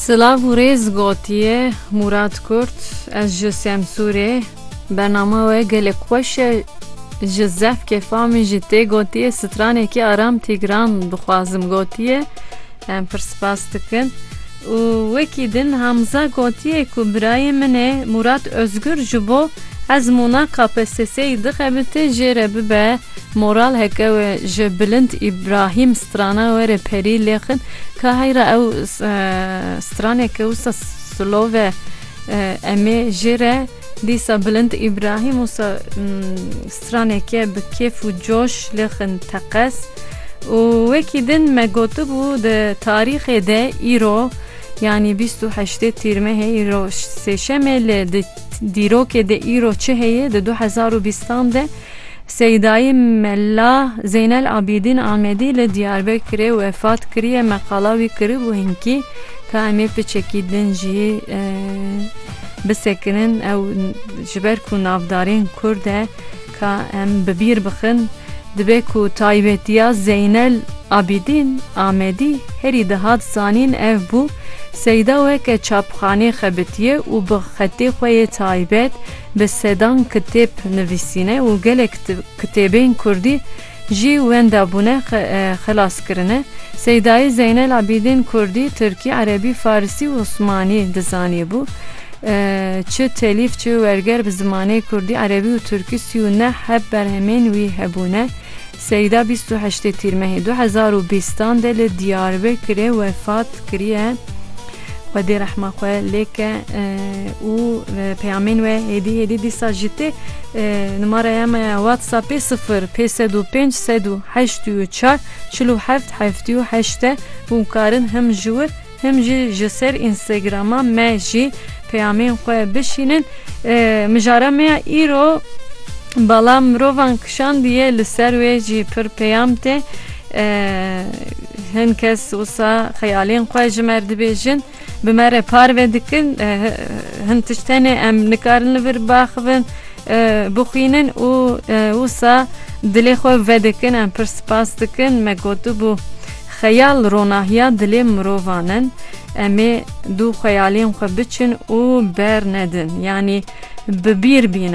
Silav û rêz gotiye Mûrat Kurt Ez ji Semsûrê Bernama we gelek xweş e Ji zef kêfa min jî tê gotiye Stranekî aram tîgran dixwazim gotiye Em pir spas dikin û wekî din Hamza gotiye ku birayê min e Mûrat Ozgur ji bo ezmûna KPSS'ê dixebite jê re bibe Moral heke we ji bilind Îbrahîm strana we re perî lê xin ka heyra ew straneke wisa silav e em ê jê re dîsa bilind Îbrahîm wisa straneke bi kêf û coş lê xin teqez û wekî din me gotibû di tarîxê de îro yanî bîst û heştê tîrmehê îro sêşemê lê di dîrokê de îro çi heye di du hezar û bîstan de Seydayê Mela Zeynel Abîdîn Amedî li Diyarbekirê wefat kiriye me qala wî kiribû hinkî ka em ê piçekî din jî bisekinin ew ji ber ku navdarên kurd e ka em bi bîr bixin dibe ku taybetiya Zeynel Abîdîn Amedî herî dihat zanîn ev bû Seyda weke çapxanê xebitiye û bi xetê xwe yê taybet Bi sedan kitêb nivîsîne û gelek kitêbên kurdî jî wenda bûne, xilas kirine. Seydayî Zeynel Abîdîn kurdî, tirkî, erebî, farisî û osmanî dizanîbû. Çi telîf çi werger bi zimanê kurdî, erebî û tirkî sî û neh heb berhemên wî hebûne. Seyda bîst û heştê Tîrmehê du hezar û bîstan de li Diyarbekirê wefat kiriye. Xwedê rehma xwe lêke û peyamên we hêdî hêdî dîsa ji tê numaraya me ya WhatsAppê sifir pê sed û pênc sed û heşt û çar çil û heft heftî û heşt e hûn karin him ji wir Him jî ji ser Instagrama me jî peyamên xwe bişînin. Mijara me ya îro Bala mirovan kişandiye li ser wê jî pir peyam tê. Hin kes wisa xeyalên xwe ji me re dibêjin, bi me re parve dikin. Hin tişt hene em nikarin li vir biaxivin, bixwînin û wisa dilê xwe vedikin. Em pir spas dikin. Me gotibû. Xeyal ronahiya dilê mirovan in, em ê dû xeyalên xwe biçin û bernedin, yanî bi bîr bînin.